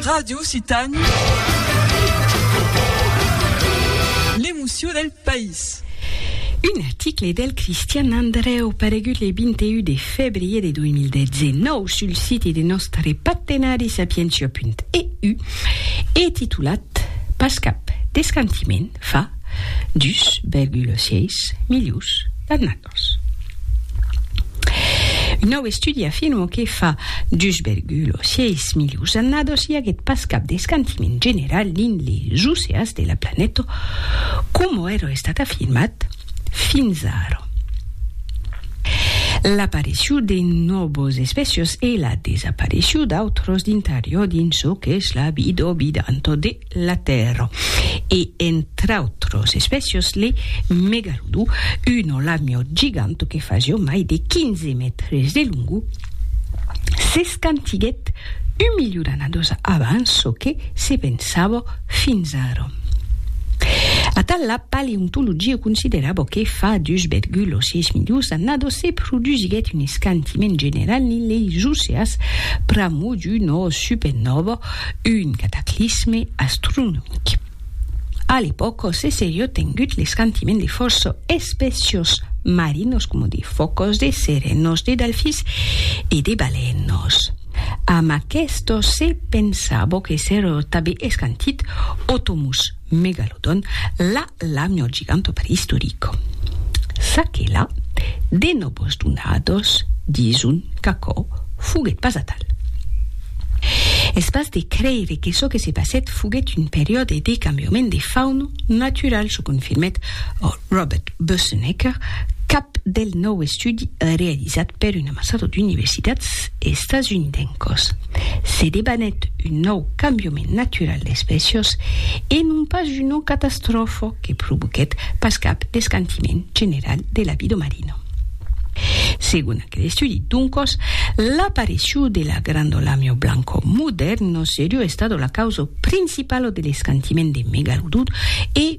Radio Occitània, l'emocion del país. Un article del Cristian Andrèu paregut le 21 de febrier de 2019 sul siti de nòstre partenari sapientia.eu e titulat Pas cap d'escantiment fa 2,6 milius d'annadas. Un nòu estudi afirma que fa 2,6 milions d'annadas i aguèt pas cap d'escantiment general dins les oceans de la planeta, coma èra estat afirmat fins ara. L'aparicion de nòvas espècias e la desaparicion d'autras d'interior dins çò qu'es la vida vidanta de la Tèrra, e entre autros espècios le megalodon, un olamio gigant que fasió mai de 15 mètres de longo, s'escantiguèt un milion d'annados abans çò que se pensava fins ara. Atal la paleontologia considerava que fa 2,6 milions d'annados se produsiguèt un escantiment general dins leis oceas pr'amor d'una supernòva Un cataclisme astronomic. A l'epòca se seriá tengut l'escantiment de fòrça espècias marinas coma de fòcas, de serenas, de delfins e de balènas. Amb aquesta se pensava que seriá tanben escantit Otomus. Megalodon, la lamio giganto preistorico. S'aquela de nobos donados dison qu'aquò foguèt pas atal. Es pas de creire que çò que se passèt foguèt un periòde de cambiament de fauna natural, çò confirmèt Robert Boesenecker, cap del nòu estudi realizat per un amassado d'universitats estasunidencos. Se debanèt un nòu cambiament natural d'espècias e non pas una catastròfa que provoquèt pas cap descantiment general de la vida marina. Segon aquel estudi, doncas, l'aparecíu de la Grandolàmia blanca modèrna seriá estada la causa principala de l'escantiment de Megalodon e,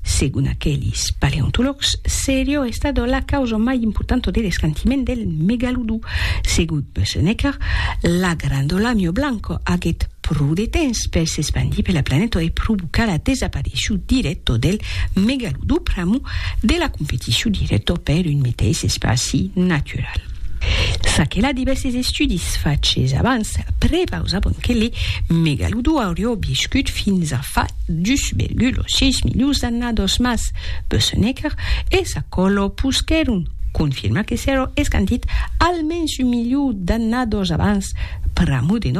Segon aquelis paleontològs, serió estado la causa mai importanta de l'escantiment del megalodon. Segon Bösenecker, la granda lamio blanca aguèt pro de temps per s'espandir per la planeta e provocar la desapareiscion dirècta del megalodon pr'amor de la competicion dirècta per un meteis espaci natural. Ça que la divèrses estudis faches abans prepausabon que le megalodon aurió viscut fins a fa 2,6 milions d'annados mas Bösenecker e sa còlo posquèron confirmar que s'èro escandit almens un milion d'annados abans pr'amor de